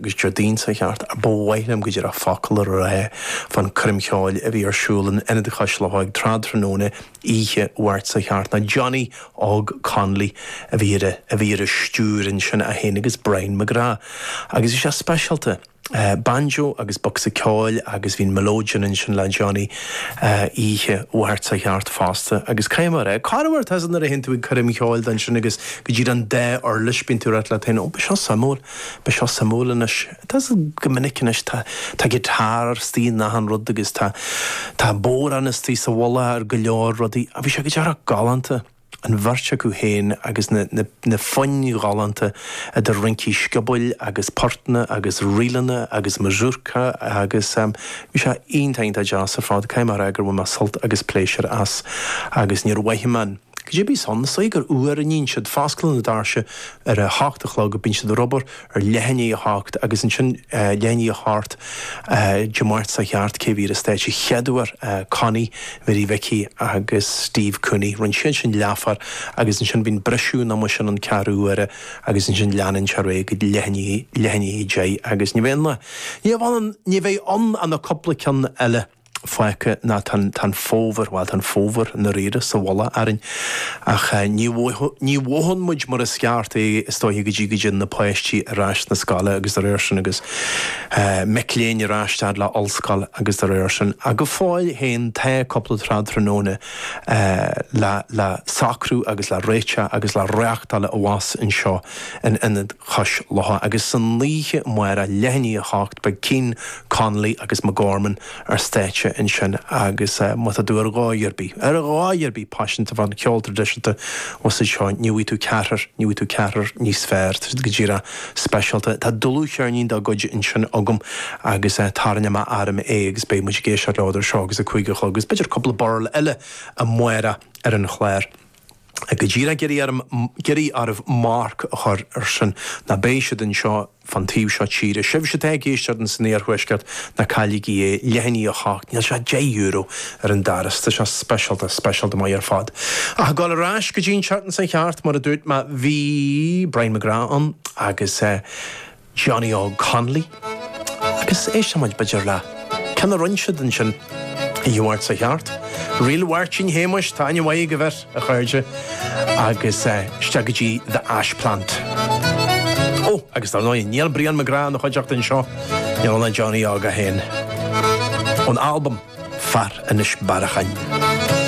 Déardaoin seo chuaigh thart, ach ba mhaith liom go díreach focal a rá fán choirm cheoil a bhí ar siúl in Ionad Chois Locha ag tráthnóna oíche Mháirt seo chuaigh thart ná Johnny Óg Connolly a bhí ar a bhí ar an stiúir ansin é féin agus Brian McGrath agus bhí sé speisialta. Banjo agus bocsa ceoil agus bhí an melodeon ansin le Johnny oíche Mháirt seo chuaigh thart fosta agus caithfidh mé a rá, cá raibh ort as nuair a théann tú ag coirm cheoil ansin agus go díreach an dá uirlis bíonn tú ag ráit leat féin, ó beidh seo suimiúil. Beidh seo suimiúil anois. Tá go minic anois tá tá guitar istigh in achan rud agus tá tá bodhrán istigh sa mhullach ar go leor rudaí ach bhí sé go díreach galánta an bheirt acu féin agus na na na foinn ghalánta idir rincí sciobóil agus portanna agus ríleanna agus mazurka agus em bhí sé iontach iontach deas ar fad caithfidh mé a rá gur bhain mé sult agus pléisiúr as agus níor mhothaigh mé an Cibé san, saoi gur uair a níonn siad foscladh na doirse ar a h-ocht a chlog bíonn siad ar obair ar leath i ndiaidh a h-ocht agus ansin leath i ndiaidh a h-ocht Dé Máirt seo chuaigh thart cé bhí ar an stáitse a chéaduair Connie Mhary Mhicí agus Steve Cooney rinne siad sin leathuair agus ansin bíonn briseadh nó mar sin an ceathrú uaire agus ansin leanann sé ar aghaidh go dtí leath i ndiaidh a deich agus ní bheidh an ní bheidh ann ann ach cúpla ceann eile. fágtha nó tá an fómhar, bhuel, tá an fómhar i ndáiríre sa mhullach orainn ach ní mhothaíonn muid mar is ceart é is dóiche go dtí go dtéann na páistí ar ais 'na scoile agus dá réir sin agus mic léinn ar ais fhad le ollscoil agus dá réir sin ach go fóill féin tá cúpla tráthnóna le socrú agus le réiteach agus le reachtáil abhus anseo in Ionad Cois Locha agus san oíche amárach leath i ndiaidh a hocht beidh Keane Connolly agus McGorman ar stáitse ansin agus má tá tú ar dhóigh ar bith, ar dhóigh ar bith! paiseanta fán cheol traidisiúnta usaid seo, ní bhfaighidh tú ceathrar, ní bhfaighidh tú ceathrar níos fearr. Tá siad go díreach speisialta. Tá dlúthcheirnín dá gcuid ansin agam agus tarraingeoidh mé orm é agus beidh muid ag éisteacht leo idir seo agus a cúig a chlog agus b'fhéidir cúpla birl eile amárach ar an chlár. go díreach ag iarraidh, ag iarraidh oraibh marc a chur ar sin, nó beidh siad anseo fán taobh seo tíre, sibhse atá ag éisteacht ins an iarthuaisceart, ná cailligí é, leath i ndiaidh a 8, níl sé ach deich euro ar an doras, tá sé speisialta, speisialta maith ar fad. Ach ag gabháil ar ais go dtí an tseachtain seo chuaigh thart, mar a dúirt mé, bhí Brian McGrath ann agus eh. Johnny Óg Connolly, Agus éistfidh muid b'fhéidir le ceann a rinn siad ansin, oíche Mháirt seo chuaigh thart. Ríl Mháirtín Shéamuis, tá ainm mhaith ag an bheirt, a chairde, agus isteach go dtí The Ash Plant. Ó, agus dar ndóigh, níl Brian McGrath ina chuideachta anseo, níl ann ach Johnny Óg é féin. Ón albam Fear Inis Bearachain.